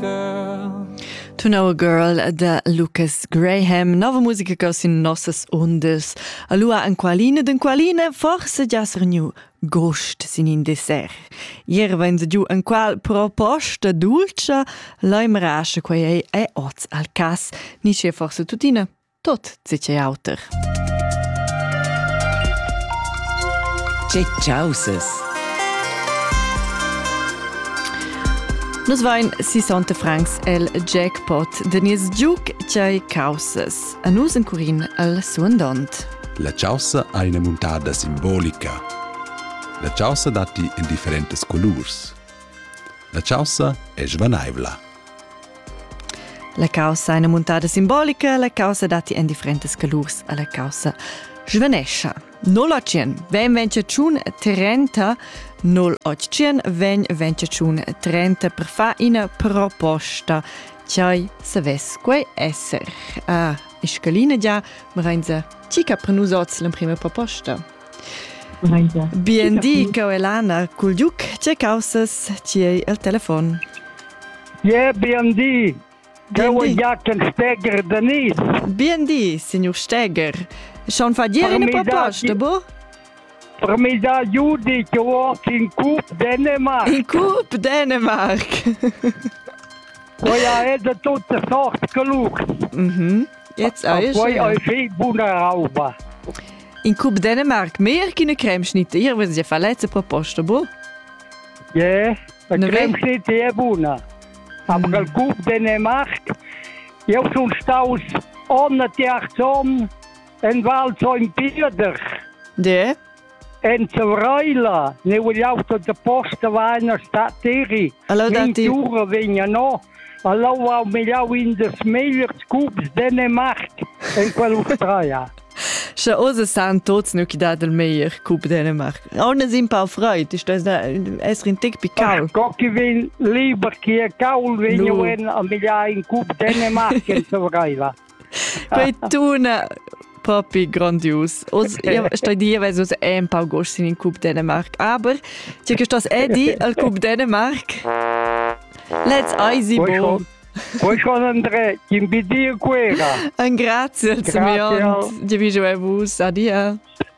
To Know a Girl da Lucas Graham, nova musica che sin nossas ondas. Allora en qualine den qualine forse già sernu gost sin in dessert. Ieri va in giù en qual proposta dolce, l'hai merasce quei è oz al cas, nisce forse tuttina. tot tge che auter. Tge ciauses! Nus vain sisonte francs el jackpot de nies giuc chai causes. A nus in curin al suandont. La chaussa ha ina muntada simbolica. La chaussa datti in differentes colurs. La chaussa è svanaivla. La caussa è ina muntada simbolica, la caussa datti en differentas colurs a la caussa svanescha. 0800 vem 21 30 0800 vem 21 30 per far una proposta. Chai savess quei esser. Ah, e scalina già, ma vegn tica per nus oz l'emprima proposta. Bien di, cau Elana, cul giuc, tge causas tiei el telefon? Ie, bien di. Cau Jack el Steger Denis. Bien di, signor Steger. Schon fa dir in proposta, bo? Per mi da Judi che ho in cup Dänemark. In cup Dänemark. Quella è da tutte sorte calur. Mhm. Jetzt auch schön. Poi hai fi buona roba. In cup Dänemark mehr che ne creme schnittier wenn sie fa letzte proposta bu? Ja, eine creme schnittier buona. Aber mm. il cup Dänemark io sono staus ohne Thearzon in Val in Pieder. Ja. En Zavraila, ne vogliamo da posta vaina sta tiri. Allora, mi giuro vegna no. Ha l'aua megliau in dils megliers cubs Danemarc en quell'Australia? Sche oz san tuts nu chi dà il meglier cub Dänemark. On es un pau freid, ist das es un tic picau. Co chi vegn liber chi è caul vegn no. en a migliar in cub Dänemark en Surviva. Quei tuna propi grandius. Oz stai dir, weil es ein paar Gosch in Cup Dänemark, aber ti che stas edi al Cup Dänemark? Let's easy bo. Poi con André, chi mi dir quera. Un grazie al Simeon, di vi giù a vus, adia.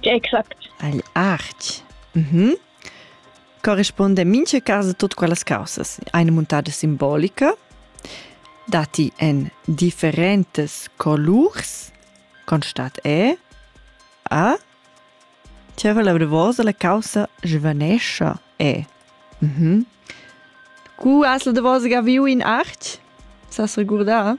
Tge exact? Agl artg. Mm -hmm. Corrispunda mincha casa tut quellas causas. Eine muntada simbolica datti en differentas colurs, constat è a Tira la vosa la causa giovanescha è. Mm -hmm. Cu has la vosa viu in art? Sa regurda?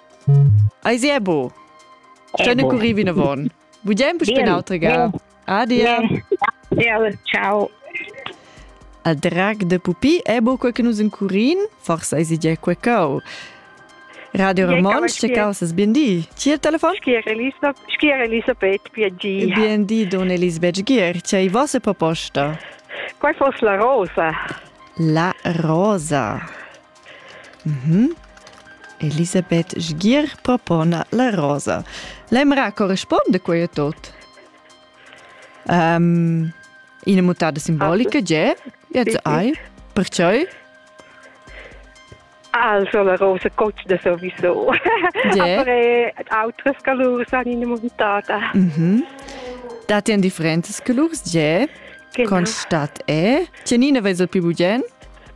Eis er bo. Stönne curri vinavon. Bugiain pus per nautrega. Adia. Ja, ciao. A drag de pupi è bo quel che nus in curin, forse eisi già quel cau. Radio Ramonsch, ce causes BND? Chi è il telefono? Schier Elisabeth PG. BND don Elisabeth Gier, c'è i vostre proposta? Qual fosse la rosa? La rosa. Mhm. Elisabeth Sgier propona la rosa. L'emra corresponde quei a tot? Um, ina muttada simbolica, ge? Jetzt ai? Perciò? Also la rosa costa sowieso. Yeah. Aber äh, altres colors han in montata. Mhm. Dati an differentas colors, ge? Genau. Constat è? Tienina vesel più bugen?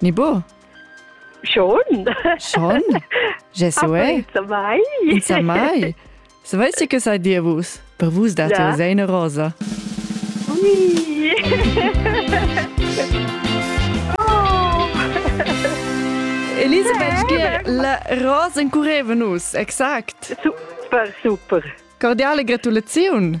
Ni bo? Schon. Schon? Je so è. Insomma, Insomma. Savessi che sai dir vus? Per vus date ja. sei una rosa. Oui. oh. Elisabeth, gie, la rosa incurreva nus, exakt. Super, super. Cordiale gratulaziun.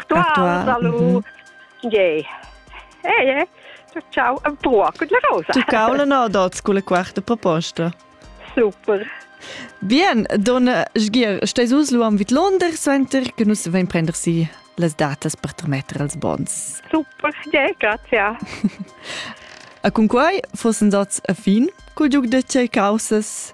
Actual. Salut. Gei. Ei, ei. Ciao, un po' con la rosa. Tu caula no dots con la quarta proposta. Super. Bien, donna Sgier, stai sus lu am vid Londra center che nus vein prender si las datas per trametter als bons. Super, gei, grazie. A cun quai fossen dots a fin col giug da tgei causas